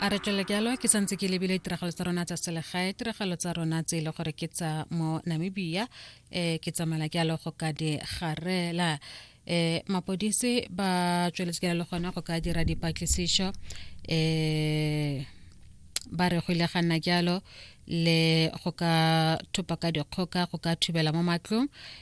a re tswele jalo ke santse ke lebile tiragalo tsa rona tsa selegae tiragalo tsa rona tse e le gore ke tsa mo namibia um ke tsamaya jalo go ka di garela eh mapodisi ba tsweletse ka le gone go ka dira dipatlisišo eh ba re go ile ga nna jalo le go ka thopa ka dikgoka go ka thubela mo matlong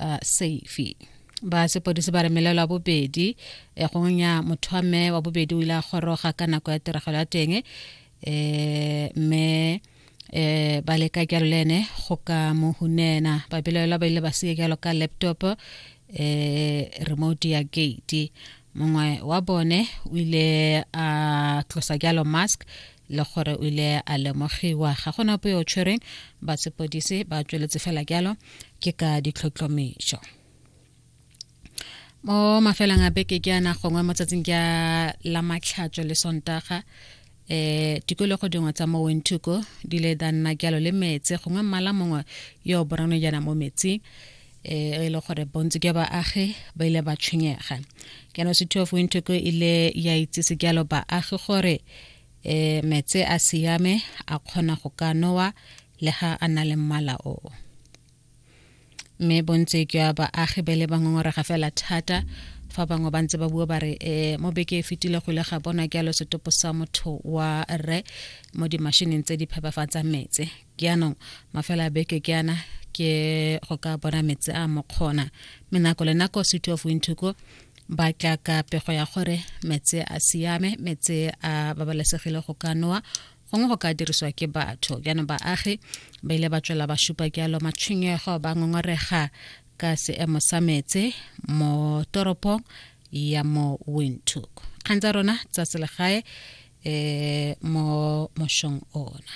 uh, safe ba sepodisi ba re melelo ya bobedi e gonya motho wa mme wa bobedi o ile a goroga ka nako ya tiragalo ya teng um eh, mme eh ba leka jalo le ene go ka mo hunena ba belaela ba ile ba seke jalo ka laptop eh remote ya gate mongwe wa bone o ile a tlosa jalo mask le gore o ile a lemogiwa ga gona ope yo tshwereng ba sepodise ba tsweletse fela jalo ke ka ditlhotlhomišo mo mafelang a beke ke ana gongwe mo tsatsing ke la matlhatso le sontaga eh tikologo dingwe tsa mo wentuko di le da nna jalo le metse gongwe mmala mongwe yo o borano jana mo metsing e le gore bontsi ke baagi ba ile ba tshwenyega jaanong city of wintoko e ile ya itsise jalo baagi gore e metse a siame a kgona go ka nowa le ga a na le mmala o mme bontsi jwa baagi ba le bangongorega fela thata fa bangwe ba ntse ba bua ba re um mo beke e fetile go ile ga bona jalo setopo sa motho wa rre mo dimashineng tse di phepafatsang metse ke anong mafela a beke ke ana ke go ka bona metse a mokgona mme nako le nako city of winthuko ba tla ka pego ya gore metse a siame metse a babalesegile go ka nowa gongwe go ka dirisiwa ke batho jaanong baagi ba ile ba tswela ba supa jalo matshwenyego ba ngongorega ka seemo sa metse mo toropong ya mo windhoek kgang tsa rona tsa selegae um mo mošong ona